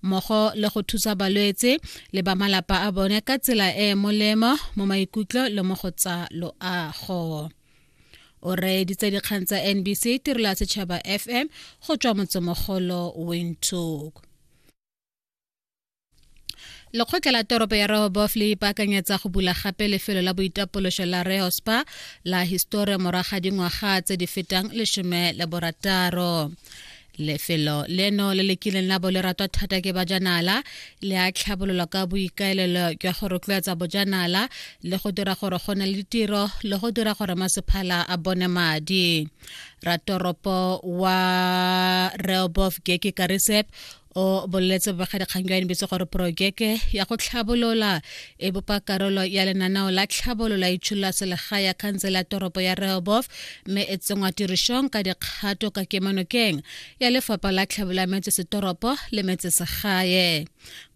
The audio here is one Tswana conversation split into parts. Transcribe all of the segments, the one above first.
mmogo le go thusa balwetse le ba malapa a bone ka tsela e e molemo mo maikutlo le mo go tsa loago o reeditse dikgang tsa nbc tirelo ya setšhaba fm go tswa motsemogolo windhoek lekgotla la toropo ya rehobof le ipaakanyetsa go bula gape lefelo la boitapološo la rehospa la histori moraga dingwaga tse di fetang lesome le borataro lefelo leno le le kileng la bo le ratwa thata ke bajanala le a tlhabololwa ka boikaelelo jwa go rotloetsa bojanala le go dira gore go ne le ditiro le go dira gore masephala a bone madi ratoropo wa reobof geke karisep o boleletse bobegedikgang jwa nbc gore porojeke ya go tlhabolola e bopa karolo ya lenaneo la tlhabolo la itsholola selegae ya khansele ya toropo ya rehobof mme e tsengwa tirišong ka dikgato ka kemanokeng ya lefapha la tlhabolo ya metsesetoropo le metsesegae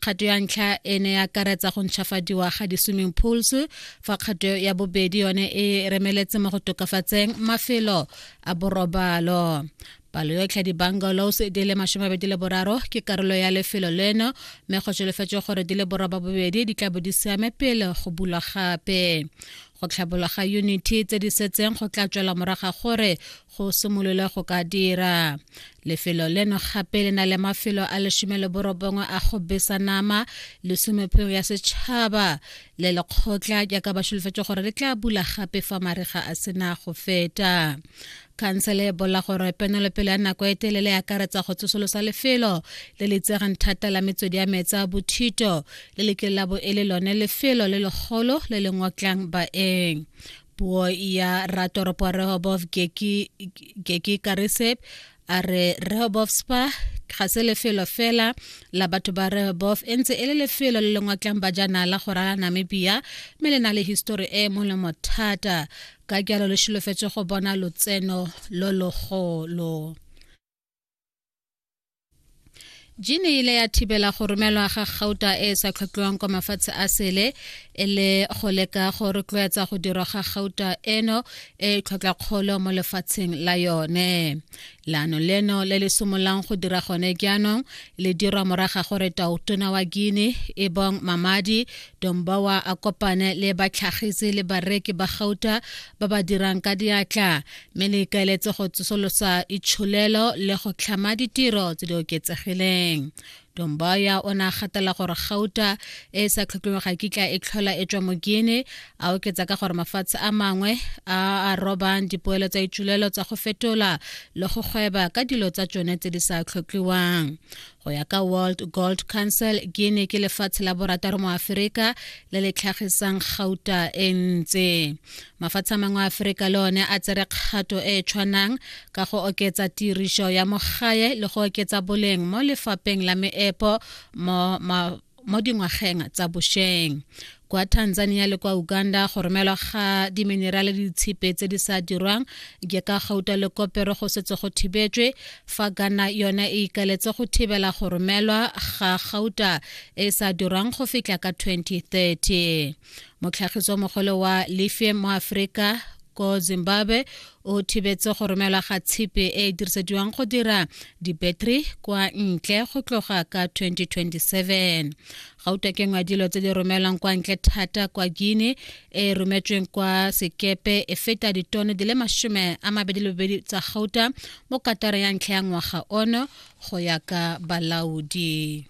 kgato ya ntlha e ne ya karetsa go ntšhafadiwa ga di-swimming pools fa kgato ya bobedi yone e remeletse mo go tokafatseng mafelo a borobalo palo yotlhe ya di-bungalows di le masomebedi le boraro ke karolo ya lefelo leno mme go solofetswe gore di le boroba bobedi di tla bo di siame pele go bulwa gape go tlhabolwa ga unity tse di setseng go tla tswela moraga gore go simolole go ka dira lefelo leno gape le na le mafelo a lesome le borobongwe a go besa nama lesomepheng ya setšhaba le lekgotla jaaka ba solofetse gore le tla bula gape fa mariga a sena go feta khansele e bolla gore penelopele ya nako e telele e akaretsa go tsosolosa lefelo le le itsegang thata la metswedi ya meetse a bothito le le kile la bo e le lone lefelo le legolo le le ngotlang baeng puo ya ratoropo rehobov geki karisep a re rehobov spa ga se lefelo fela la batho ba rehobov e ntse e le lefelo le le ngotlang bajanala go rala namibia mme le na le histori e e molemo thata ka jalo le šholofetse go bona lotseno lo logolo jine ile ya thibela go romelwa ga gauta e e sa tlhotlhiwang kwa mafatshe a sele e le go leka go rotloetsa go dirwa ga gauta eno e tlhotlhakgolo mo lefatsheng la yone leano leno le le simololang go dira gone jaanong le dirwa moraga gore taotona wa guine e bong mamadi dombowa a kopane le batlhagisi le bareki ba gauta ba ba dirang ka diatla mme le ikaeletse go tsosolosa itsholelo le go tlhama ditiro tse di oketsegileng Domboya o ne a gatela gore gauta e e sa tlhokiweng ga kitla e tlhola e tswa mo Guinea a oketsa ka gore mafatshe a mangwe a a robang dipoelo tsa itšulelo tsa go fetola le go gweba ka dilo tsa tsone tse di sa tlhokiwang go ya ka world gold council guinea ke lefatshe la borataro mo aferika le le tlhagisang gauta e ntse mafatshe a mangwe a aforika le one a tsere kgato e e tshwanang ka go oketsa tiriso ya mogae le go oketsa boleng mo lefapeng la meepo mo mo dingwageng tsa bosheng kwa tanzania le kwa uganda go romelwa ga diminerale le ditshipe tse di sa dirwang ke ka gauta le kopero go setse go thibetswe fa ghana yone e ikaletse go thibela go romelwa ga gauta e sa dirwang go fitlha ka 2030 motlhagisi wa mogole wa lifie mo aforika ko zimbabwe o thibetse go romelwa ga tshipi e e dirisediwang go dira dibattery kwa ntle go tloga ka 2027 gauta ke ngwa dilo tse di romelwang kwa ntle thata kwa guine e rometsweng kwa sekepe e feta ditone di le masome a mabedi le bobedi tsa gauta mo katara ya ntlha ya ngwaga ono go ya ka balaodi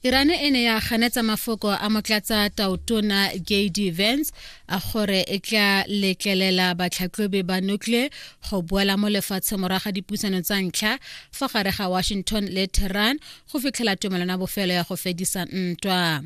Iran e ne ya ganetsa mafoko a motlatsa taotona JD Vance a gore e tla letlelela batlhatlhobi ba nuclear go boela mo lefatshe moraga dipusano tsa ntlha fa gare ga Washington le Tehran go fitlhela tumelano ya bofelo ya go fedisa ntwa.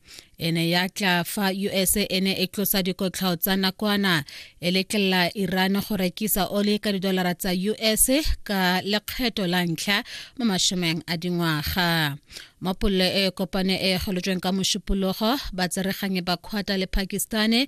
e ne ya tla fa us e ne e tlosa dikotlhao tsa nakwana e letlelela iran go rekisa oli ka didolara tsa us ka lekgetho la ntlha mo mashomeng a dingwaga mo polelo e kopane e golotsweng ka mošupologo batsereganyi ba kgwata le pakistane